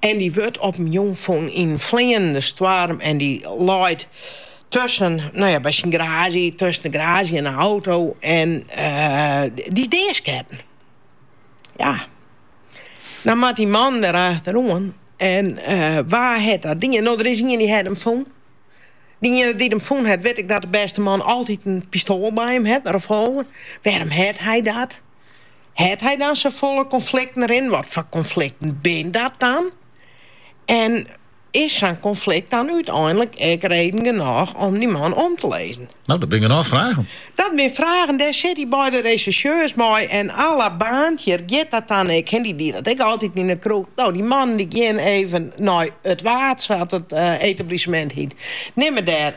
En dy wurdt op in jûn fûn yn in fleanende stoarm en dy leit tusken, no ja, by syn garaazje, tusken de garaazje en de auto en dy is deasketten. Ja. Dan moat dy man der achteroan en wa hat dat dien? No, der is ien dy't hat him fûn. Dy iene dy't him fûn hat, wit ek dat de bêste man altyd in pistoal by him hat, in revolver. Wêrom hat hy dat? Hat hy dan safolle konflikten rinnen? Wat foar konflikten binne dat dan? En is sa'n konflikt dan úteinlik ek reden genôch om dy man om te lizzen? No, dat binne genôch fragen. Dat binne fragen, dêr sit dy beide resjersjeurs mei en à la Baantjer giet dat dan ek, hy die dat ek altyd yn 'e kroech. No, dy mannen gean even nei it Waad, sa't it etablissemint hiet, nimme dêr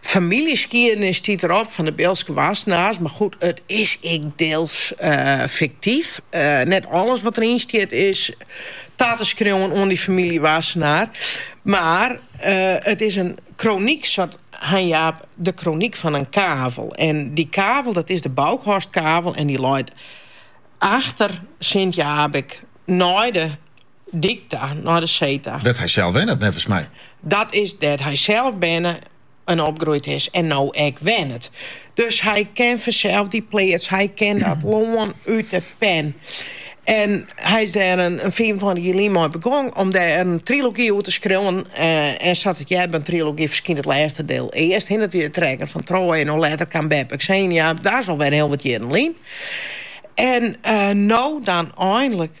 Famyljeskiednis stiet derop fan de Biltske Wassenaars, mar goed, it is ek deels fiktyf. Net alles wat deryn stiet is ta te skriuwen oan dy famylje Wassenaar, mar it is in kronyk, seit Hein Jaap, de kronyk fan in kavel. En dy kavel, dat is de Boukhorstkavel en dy leit achter Sint Jaabik nei de. dyk ta, nei de see ta. Dêr't hy sels wennet, neffens my. Dat is dêr't hy sels berne en opgroeid is en no ek wennet. Dus hy ken fansels dy pleats, hy ken dat lân út de pinne. En hy is dêr in fiifentweintich jier lyn mei begong om dêr in trilogy oer te skriuwen. En sa't it heart by in trilogy ferskynt it lêste diel earst, hen. It wie De trekker fan Troje en no letter kaam Beppe Xenia. Dat is alwer hiel wat jierren lyn. En no dan einlik.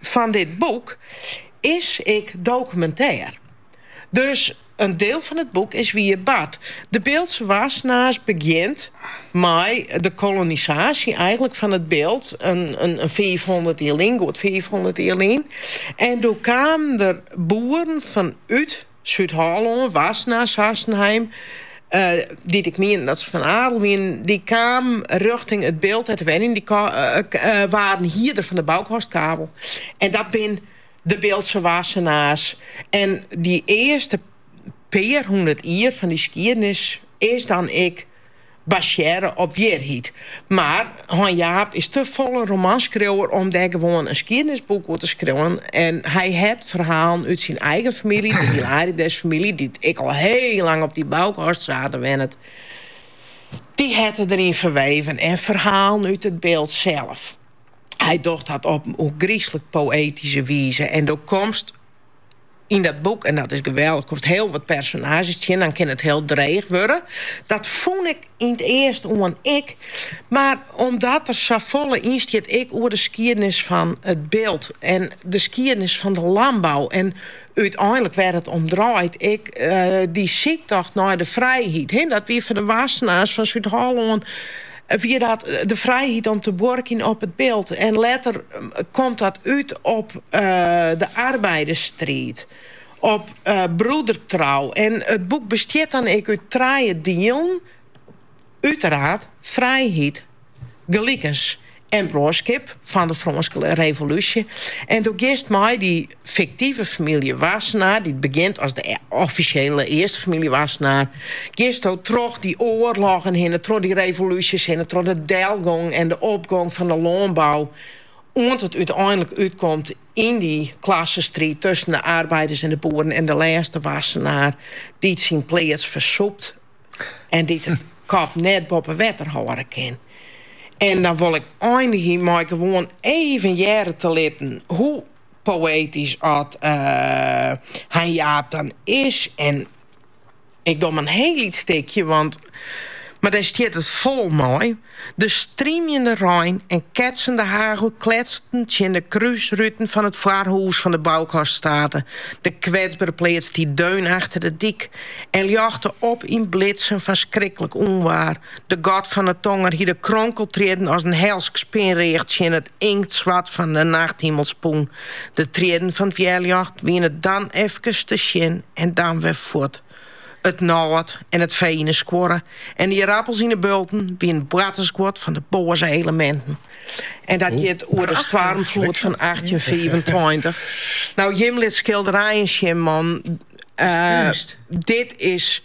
fan dit boek is ek dokumintêr. Dus in diel fan it boek is wier bard. De Biltse Wassenaars begjint mei de kolonisaasje eigenlik fan it Bilt in fiifhûndert jier lyn, goed fiifhûndert jier lyn. En doe kamen der boeren fanút Súd-Hollân, Wassenaar, Sassenheim, dy't ek mienden dat se fan adel wienen, dy kamen rjochting it Bilt te wenjen en dy waarden hierder fan de Boukhorstkavel. En dat bin de Biltse Wassenaars. En dy earste pear hûndert jier fan dy skiednis is dan ek basearre op wierheid. Mar Hein Jaap is te folle romanskriuwer om dêr gewoan in skiednisboek oer te skriuwen en hy hat ferhalen út syn eigen famylje, de Hilarides-famylje, dy't ek al hiel lang op dy Boukhorstsate wennet, dy hat er deryn ferweven en ferhalen út it Bilt sels. Hy docht dat op in ôfgryslik poëtyske wize en do komst. Yn dat boek, en dat is geweldich, komst hiel wat personaazjes tsjin, dan kin it hiel dreech wurde. Dat fûn ik yn 't earst oan ek, mar omdat der safolle yn stiet ek oer de skiednis fan it Bilt en de skiednis fan de lânbou en úteinlik wêr't it om draait, ek dy syktocht nei de frijheid, dat wie foar de Wassenaars fan Súd-Hollân, wie dat de frijheid om te buorkjen op it Bilt. En letter komt dat út op de arbeidersstriid, op broedertrou. En it boek bestiet dan ek út trije dielen, uiteraard, frijheid, gelikens en bruorskip fan de Frânske Revolúsje. En do giest mei dy fiktive famylje Wassenaar, dy't begjint as de offisjele earste famylje Wassenaar, gisto troch dy oarloggen hinne, troch dy revolúsjes hinne, troch de delgong en de opgong fan de lânbou, oant it úteinlik útkomt yn dy klassestriid tusken de arbeiders en de boeren en de lêste Wassenaar dy't syn pleats fersûpt en dy't de kop net boppe wetter hâlde kin. En dan wol ik einigje mei gewoan even hearre te litten hoe. poëtysk as Hein Jaap dan is. En ik doch in hiel lyts stikje, want mar dêr stiet it fol mei. De strymjende rein en ketsende hagel kletsten tsjin de krúsruten fan it foarhûs fan de Boukaststate. De kwetsbere pleats stie deun achter de dyk en ljochte op yn blitsen fan skriklik ûnwaar. De god fan 'e tonger hie de kronkeltriedden as in helsk spinreach tsjin it Inktswart fan 'e nachthimel spûn. De triedden fan 't wjerljocht wiene dan efkes te sjen en dan wer fuort. It nôt en it fee yn 'e skuorre en de ierappels yn 'e bulten wiene boartersguod fan 'e boaze eleminten. En dat giet oer de stoarmfloed fan achttjinfiifentweintich. No, Jim lit skilderijen sjen, man. Dit is.